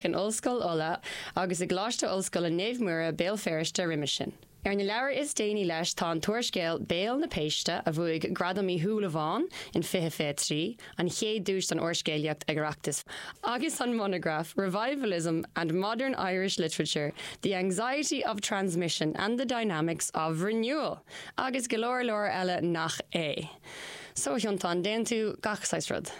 in Ollscoil Uladh agus i gColáiste Ollscoile Naomh Muire, Béal Feirste, roimis sin. Ar na leabhair is déanaí leis tá an t-úrscéal Béal na Péiste, a bhuaigh Gradam Uí Shúilleabháin in 2023, an chéad duais don úrscéalaíocht ag Oireachtas, agus an monagraf Revivalism and Modern Irish Literature, The Anxiety of Transmission and the Dynamics of Renewal! agus go leor leor eile nach é. So, a Fhionntáin, déanann tú gach saghas rud.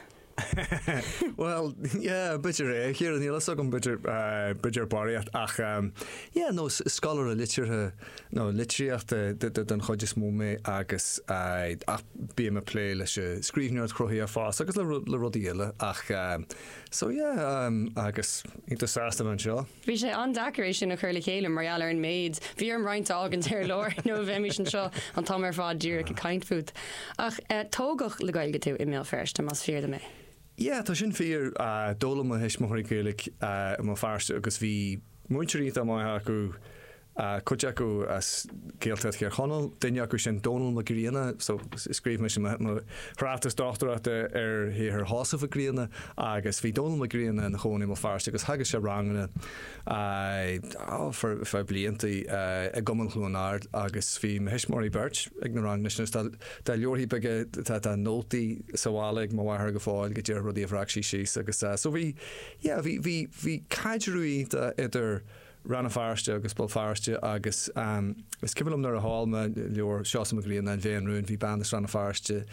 Bhuel, yeah, b'fhéidir é, a Chiara, níl a fhios agam, b'fhéidir, eh, b'fhéidir barraíocht, ach, ehm, yeah, nó s- scoláire liteartha, nó litríochta d- d- den chuid is mó mé agus, eh, ach bím ag plé leis an scríbhneoireacht chruthaitheach fosta agus le ru- le rudaí eile ach, eh, so yeah, ehm, agus iontach sásta bheith anseo. Bhí sé an-deacair é sin a chur le chéile mar gheall ar an méid. Bhí orm roinnt a fhágaint ar lár nó bheimis anseo an t-am ar fad díreach ag caint fút. Ach tógadh le Gaeilge tú i mBéal Feirste, más fíor dom é? Yeah, tá sin fíor. D'fhoghlaim mo thuismitheoirí Gaeilge i mBéal Feirste agus bhí múinteoirí iontach maith acu cuid acu as Gaeltacht Thír Chonaill, duine acu sin Dónall Mac Grianna, so scríobh mise mo thráchtas dochtúireachta ar shaothar Sheosaimh Mhic Grianna agus bhí Dónall Mac Grianna ina chónaí i mBéal Feirste agus theagasc sé ranganna ar feadh blianta i gCumann Chluain Ard agus bhí mo thuismitheoirí beirt ag na ranganna sin agus tá leabharthaí beaga, tá nótaí sa bhaile ag mo mháthair go fóill de rudaí a bhreac sí síos agus so bhí, yeah, bhí caidreamh iontach idir Rann na Feirste agus Béal Feirste agus is cuimhin liom nuair a sheol mé leabhar Seosamh Mac Grianna, An Mhéin Rúin, bhí bean as Rann na Feirste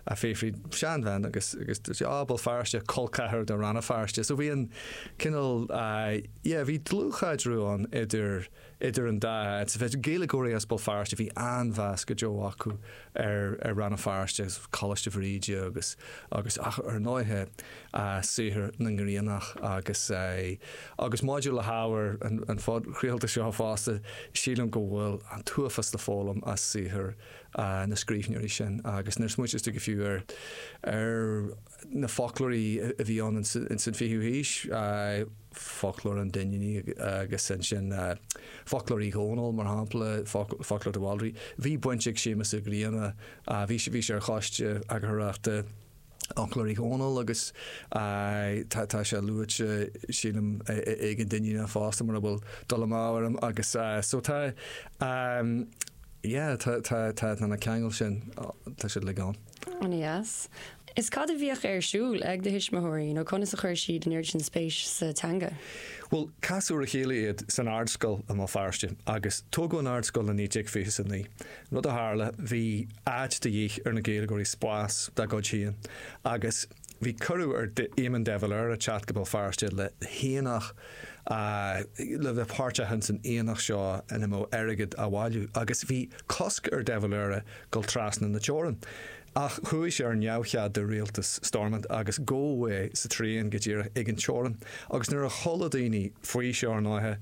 a' fiafraí, seanbhean agus agus dúirt sí Á, Béal Feirste, col ceathar do Rann na Feirste. So bhí an cineál yeah, bhí dlúthchaidreamh ann idir idir an dá áit. Bheadh Gaeilgeoirí as Béal Feirste, bhí an-mheas go deo acu ar Rann na Feirste agus Coláiste Bhríde agus agus ach ar ndóighe saothar na nGriannach agus agus maidir le hábhar an phodchraolta seo fosta sílim go bhfuil an t-uafás le foghlaim as saothar na scríbhneoirí sin agus nuair a smaoitíos tú, go fiú ar ar na foclóirí a bhí ann ins an fichiú haois Foclóir an Duinnínigh agus ansin Foclóir Uí Dhónaill, mar shampla, Foclóir de Bhaldraithe. Bhí baint ag Séamus Ó Grianna, bhí sé ar choiste eagarthóireachta Fhoclóir Uí Dhónaill agus tá sé luaite, sílim, ag an Duinníneach fosta, mura bhfuil dul amú orm. Agus so tá, yeah, tá na ceangail sin, tá siad uilig ann. Aneas. Is cad a bhíodh ar siúl ag do thuismitheoirí nó conas a chuir siad in airde an spéis sa teanga? Bhuel, casadh ar a chéile iad san Ardscoil i mBéal Feirste agus tógadh an Ardscoil i 1929. Rud a tharla, bhí áit de dhíth ar na Gaeilgeoirí spás dá gcuid féin agus bhí cuireadh ar Éamon de Valera teacht go Béal Feirste le haonach le bheith páirteach insan aonach seo ina mbeadh airgead á bhailiú agus bhí cosc ar de Valera dul trasna na teorann. Ach chuaigh sé ar neamhchead do rialtas Stormont agus gabhadh é sa traein go díreach ag an teorann. Agus nuair a chuala daoine faoi seo ar ndóighe,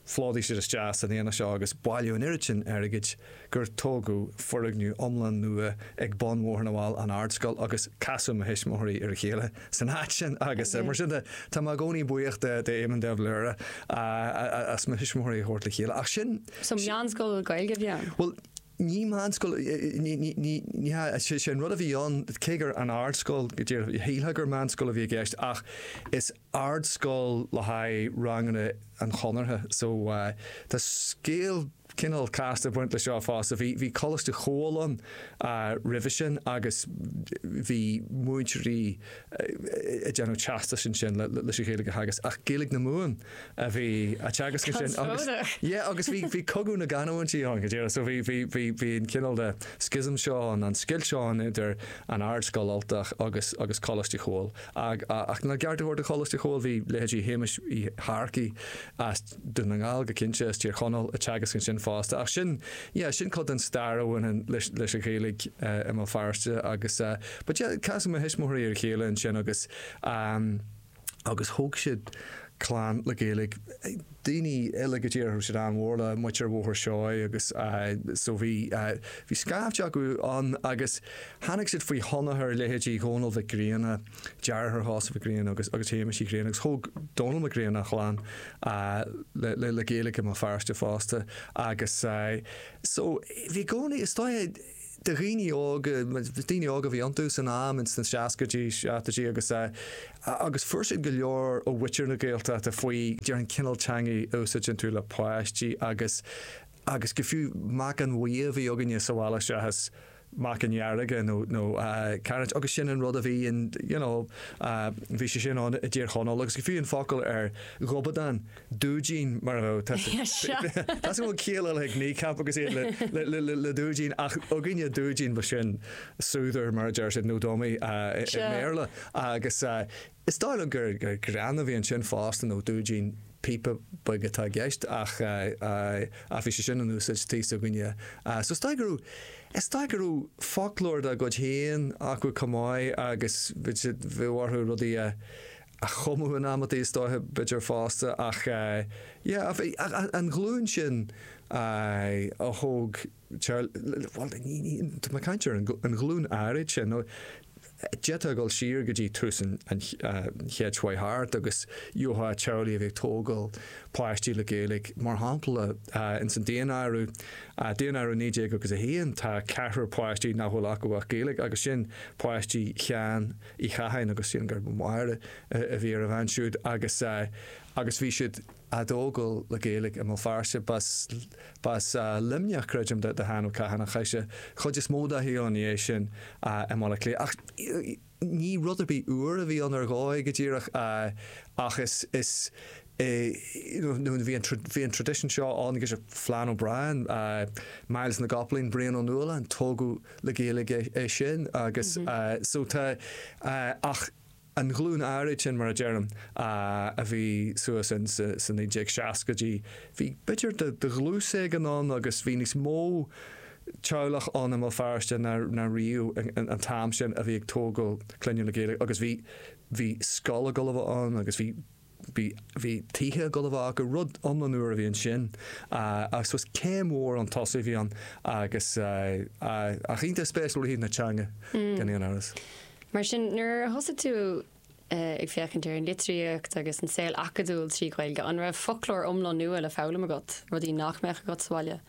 phlódaigh siad isteach san aonach seo agus bailíodh an oiread sin airgid gur tógadh foirgneamh iomlán nua ag bun Bhóthar na bhFál, an Ardscoil, agus casadh mo thuismitheoirí ar a chéile san áit sin agus mar sin de tá mé i gcónaí buíoch d'Éamon de Valera as mo thuismitheoirí a thabhairt le chéile. Ach sin. So meánscoil Gaeilge a bhí ann? Bhuel, Ní meánscoil, ní hea, is é an rud a bhí ann, cé gur an ardscoil go díreach, shílfeá gur meánscoil a bhí i gceist ach is ardscoil le haghaidh ranganna an Chonartha. So tá scéal cineál casta ag baint leis seo fosta. Bhí Coláiste Chomhghaill ann roimhe sin agus bhí múinteoirí ag déanamh teastais ansin leis an Ghaeilge a theagasc ach Gaeilge na Mumhan. a bhí á teagasc ansin agus Conspóideach. yeah agus bhí bhí cogadh na gcanúintí ann go díreach so bhí bhí bhí bhí an cineál de schism seo ann an scoilt seo ann idir an Ardscoil Ultach agus agus Coláiste Chomhghaill ag ach lena gceart a thabhairt do Choláiste Chomhghaill bhí leithéidí Shéamuis Uí Shearcaigh as Dún na nGall go cinnte as Tír Chonaill ag teagasc ansin fosta ach sin yeah sin cuid den stair a bhaineann leis leis an Ghaeilge i mBéal Feirste agus eh but yeah casadh mo thuismitheoirí ar a chéile ansin agus ehm agus thóg siad clann le Gaeilge. Daoine eile go d'éirigh siad an-mhór le muintir Bhóthar Seoighe agus so bhí scaifte acu ann agus tháinig siad faoi thionchar leithéidí Dhónaill Mhic Grianna, deartháir Sheosaimh Mhic Grianna agus Shéamuis Uí Ghrianna agus thóg Dónal Mac Grianna a chlann le Gaeilge i mBéal Feirste fosta agus so bhí i gcónaí, is dóigh, de dhaoine óga, daoine óga a bhí iontu san am, ins na seascaidí, seachtoidí agus agus fuair siad go leor ó mhuintir na Gaeltachta faoi, déarfainn, cineál teangaidh a úsáideann tú le páistí agus agus go fiú meacain bhuí a bhí againne sa bhaile seachas meacain dhearga nó nó cairéad agus sin an rud a bhí in you know bhí sé sin ann i dTír Chonaill agus go fiú an focal ar ghobadán, Dúidín mar a raibh. Tá súil go bhfuil ciall eile ag Kneecap agus iad le Dúidín ach againne Dúidín b'shin soother mar a deir siad nó dummy i mBéarla agus is dóigh liom gur greann a bhí ansin fosta nó Dúidín píopa beag atá i gceist ach bhí sé sin in úsáid tigh s'againne. So is dóigh go raibh, is dóigh go raibh foclóir dá gcuid féin acu chomh maith agus bhí siad, bhí orthu rudaí a a chumadh in amantaí is dóiche b'fhéidir fosta ach yeah an ghlúin sin a thóg teaghlaigh bhuel tá mé ag caint ar an ghlúin áirid sin nó d'fhéadfá dul siar go dtí tús an chéid a chuaigh thart agus gheofá teaghlaigh a bhí ag tógáil páistí le Gaeilge mar shampla ins an daonáireamh daonáireamh 1901 tá ceathrar páistí nach bhfuil acu ach Gaeilge agus sin páistí Sheáin Uí Chatháin agus sílim gurb í Máire a bhí ar a bhean siúd agus agus bhí siad a' tógáil le Gaeilge i mBéal Feirste. B'as, b'as Luimneach creidim do Sheán Ó Catháin ach chaith sé chuid is mó dá shaol i ndiaidh sin i mBaile Átha Cliath ach ní rud ar bith úr a bhí ann ar dhóigh go díreach ach is, is. Bhí an traidisiún seo ann agus Flann O'Brien, Myles na gCopaleen, Brian Ó Nualláin, tógadh le Gaeilge é sin agus so tá ach an ghlúin áirid sin mar a deirim a bhí suas ins na 1960idí bhí b'fhéidir de dhlús éigin ann agus bhí níos mó teaghlach ann i mBéal Feirste ná riamh an tam sin a bhí ag tógáil clainne le Gaeilge agus bhí bhí scoil ag gabháil a bheith ann agus bhí Bhí tithe ag gabháil a bheith acu rud iomlán úr a bhí ansin I suppose céim mhór chun tosaigh a bhí ann agus ach iontach spéisiúil ó thaobh na teanga gan aon amhras. Mar sin nuair a thosaigh tú ag féachaint ar an litríocht agus an saol acadúil trí Ghaeilge, an raibh foclóir iomlán nua le foghlaim agat, rudaí nach mbeadh agat sa bhaile?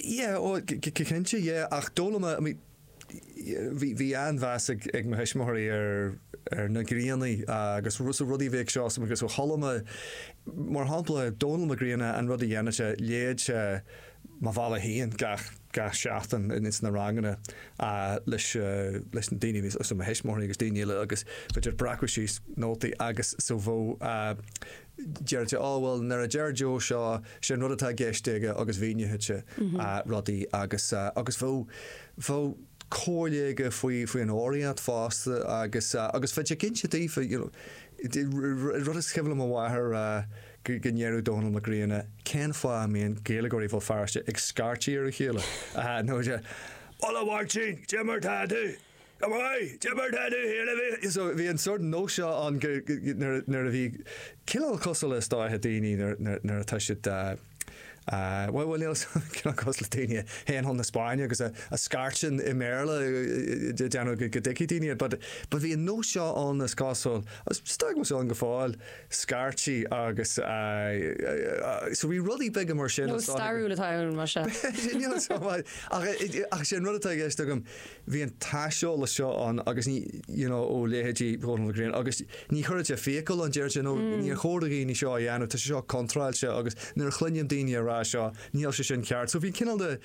Yeah, go cinnte yeah ach d'fhoghlaim mé, Bhí an-mheas ag mo thuismitheoirí ar na Grianna agus so rudaí a bhí ag Seosamh agus ó chuala mé mar shampla Dónall Mac Grianna an rud a dhéanadh sé léadh sé Mo Bhealach Féin gach seachtain ins na ranganna leis na daoine so mo thuismitheoirí agus daoine eile agus b'fhéidir breacadh síos nótaí agus so bheadh Deireadh sé, á bhuel, nuair a deir Joe seo, sé an rud atá i gceist aige agus mhíníodh sé rudaí agus, agus bheadh, bheadh comhairle aige faoi, faoi an fhoghraíocht fosta agus, agus bheadh sé ag inse daofa, you know, an rud is cuimhin le mo mháthair go, go ndeireadh Dónall Mac Grianna, cén fáth a mbíonn Gaeilgeoirí Bhéal Feirste ag scairtigh ar a chéile, you know, Hello a Mháirtín, cé mar tá tú? Bhí an sort nós seo ann nuair a bhí cineál cosúil le sa dóigh daoine nuair atá siad bhuel níl cineál cosúil le daoine a théann chun na Spáinne agus a scairteann i mBéarla ag déanamh go dtuigfidh daoine iad but bhí an nós seo ann is cosúil agus stoigh muid ann go fóill a scairtí agus so bhí rudaí beaga mar sin. Nós stairiúil atá ann mar seo. Ach sé an rud atá i gceist agam Bhí an t-aiseolas seo ann agus ní, you know, ó leithéidí Dhónaill na Gréine agus ní chuireann sé fiacail ann, deir sé ó níor chóir do dhaoine seo a dhéanamh, tá sé seo contráilte agus nuair a chluinim daoine ag rá seo níl sé sin ceart. So bhí cineál de,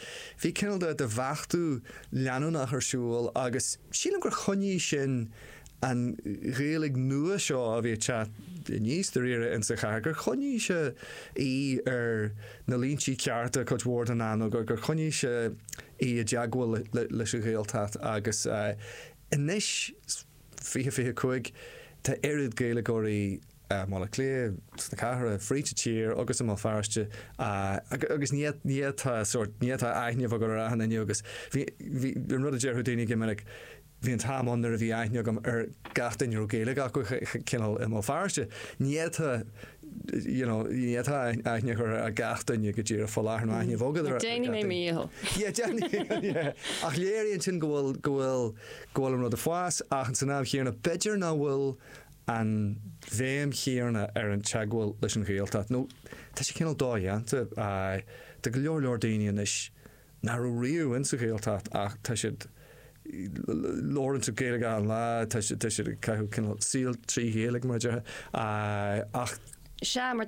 bhí cineál de, de bheachtú leanúnach ar siúl agus sílim gur choinnigh sin an Ghaeilge nua seo a bhí ag teacht aníos dáiríre insa chathair, gur choinnigh sé í ar na líntí cearta cuid mhór den am nó gur choinnigh sé í i dteagmháil leis an Ghaeltacht agus anois, 20, 25, tá oiread Gaeilgeoirí i mBaile Átha Cliath, sna cathracha, fríd an tír agus i mBéal Feirste agus ní fhéadfá, sórt, ní fhéadfá aithne a bheith agat ar achan nduine agus bhí, bhí, an rud a déarfadh daoine go minic, Bhí an t-am ann nuair a bhí aithne agam ar gach duine a raibh Gaeilge acu cineál i mo pharóiste. Ní fhéadfá, you know, ní fhéadfá aithne a chur ar gach duine go díreach fá láthair, nó aithne a bheith agat ar gach duine. Déanfaidh mé m'dhícheall. Yeah, déanfaidh, yeah. Ach léiríonn sin go bhfuil, go bhfuil, go bhfuil an rud ag fás. Ach san am chéanna, b'fhéidir nach bhfuil an bhéim chéanna ar an teagmháil leis an Ghaeltacht, nó tá sé cineál dodhéanta do go leor, leor daoine anois. nach raibh riamh insa Ghaeltacht ach tá siad ag labhairt Gaeilge achan lá tá siad ag caitheamh cineál saol trí Ghaeilge mar a déarfá ach. Sea mar